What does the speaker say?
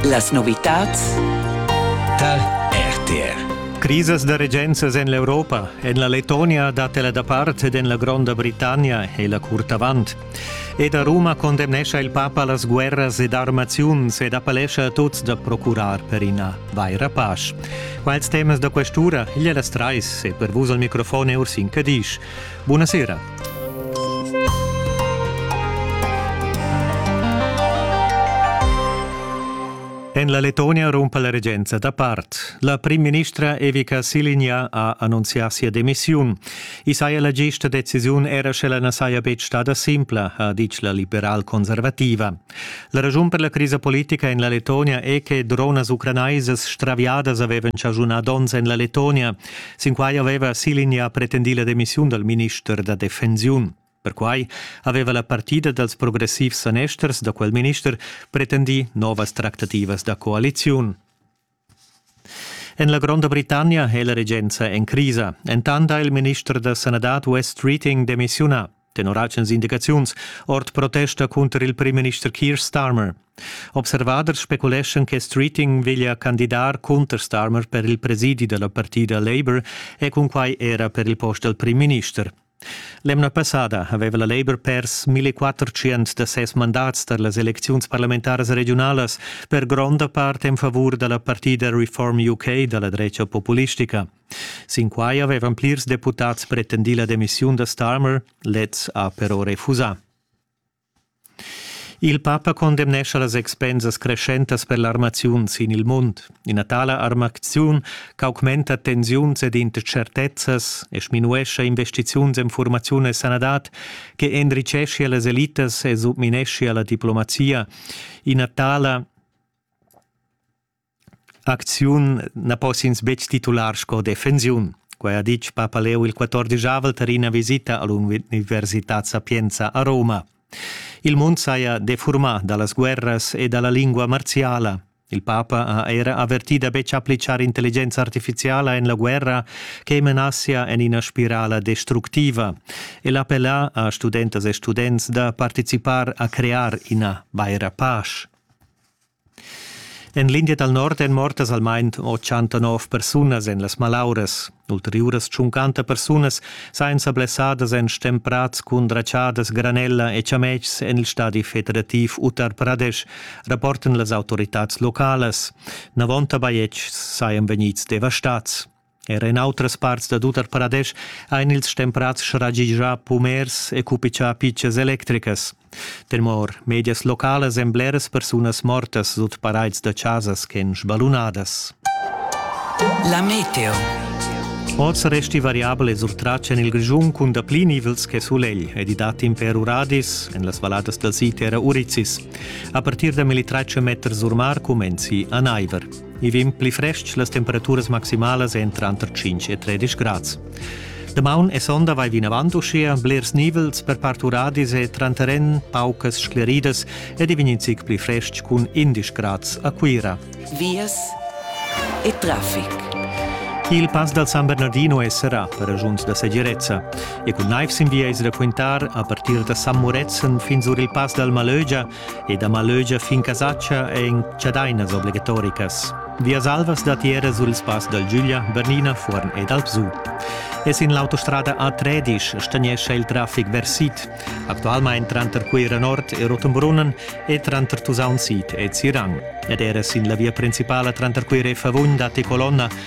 Las novitads tar RTR. Crisas da regenzas en l'Europa, en la Letonia dat ella da part ed en la Gronda Britannia è la curt avant. Ed a Roma condemnescha il papa las guerras ed armaziuns ed appellescha a tuts da procurar per ina vaira pace. Quals temas da questura? Igl è las trais e per vus al microfon è Ursin Cadisch. Bunasera. En la Letonia rumpa la regenza da part. La primministra Evica Siligna ha annunzià sia demissiun. I saja la gista decisiun era sche la na saja betg stada simpla, ha ditg la liberal-conservativa. La ragiun per la crisa politica en la Letonia è che dronas ucranaisas straviadas avevan chaschunà donns en la Letonia. Sinquai aveva Silinja pretendì la demissiun dal minister da defensiun. Perquai aveva la partida dals progressivs sanesters da quel minister pretendì novas tractativas da coaliziun. En la Gronda Britannia è la regenza en crisa. Entant ha il minister da sanadad Wes Treating demissiunà. tenor alchens indicaziuns, ord protesta cunter il primminister Keir Starmer. Observaders speculeschan che Streeting veglia candidar cunter Starmer per il presidi della partida Labour e cunquai era per il post del primminister. L'emna passada aveva la Labour pers 1400 da ses mandats tar las elecziuns parlamentaras regionalas per gronda part en favur da la partida Reform UK da la drecha populistica. Sin quai avevan plirs deputads pretendì la demissiun da Starmer, lez ha però refusà. Il papa condemnescha las expensas creschentas per l'armaziun sin il mund. Ina tala armaziun ch'augmenta tensiuns ed intschertezzas e sminuescha investiziuns en formaziun e sanadad che enricheschia las elitas e submineschia la diplomazia. Ina tala Acziun na poss'ins betg titular sco defensiun. Quai ha ditg papa Leo il quattordisavel tar ina visita a l'Universitad Sapienza a Roma. Il mund saja defurmà da las guerras e da la lingua marziala. Il papa ha era avvertì da betg appliccar intelligenza artifiziala en la guerra che menassia en ina spirala destructiva. El appella a studentas e students da participar a crear ina vaira pace. En l'India dal nord èn mortas almain 89 persunas en las malauras. Ulteriuras tschuncanta persunas sajan sa blessadas en stemprads cun dratschadas, granella e chametgs en il stadi federativ Uttar Pradesh, rapportan las autoritads localas. Navonta bajetgs sajan vegnids devastads. Er en outras parts da tut Paradesch ein ils stemprats sragigià pumers e cupichà pitschas electricas. Tenor medias localas èn bleras persunas mortas sut paraids da chasas ch'en sbalunadas. La meteo. Oz resti variabel e surtratg en il Grischun cun dapli nivels che sulegl ed i dat in per uradis en las valladas dal sid era Urizis. A partir da 1300 meters sur mar cumenzi a naiver. I vegn pli frestg, las temperaturas maximalas èn tranter 5 e 13 grads. Damaun e sonda vai vinavant uschia blers nivels per part uradis e tranteren paucas scleridas ed i vegn zic pli frestg cun 11 grads a Cuira. Vias e traffic. Il pass dal San Bernardino è serrà per ragiuns da segirezza e cun naif sin via es da quintar a partir da San Murezzan fin sur il pass dal Malögia e da malögia fin Casatscha è in chadainas obligatoricas. Vias alvas datiera sul spass dal Giuglia, Bernina, Fuorn ed Alpsu. E sin l'autostrada A13 stagnescha il traffic versit, actualmain tranter Cuira Nord e Rotenbrunnen e tranter Tusaun Sid e Zirang. Ed era sin la via principala tranter Cuira e Favugn datti colonna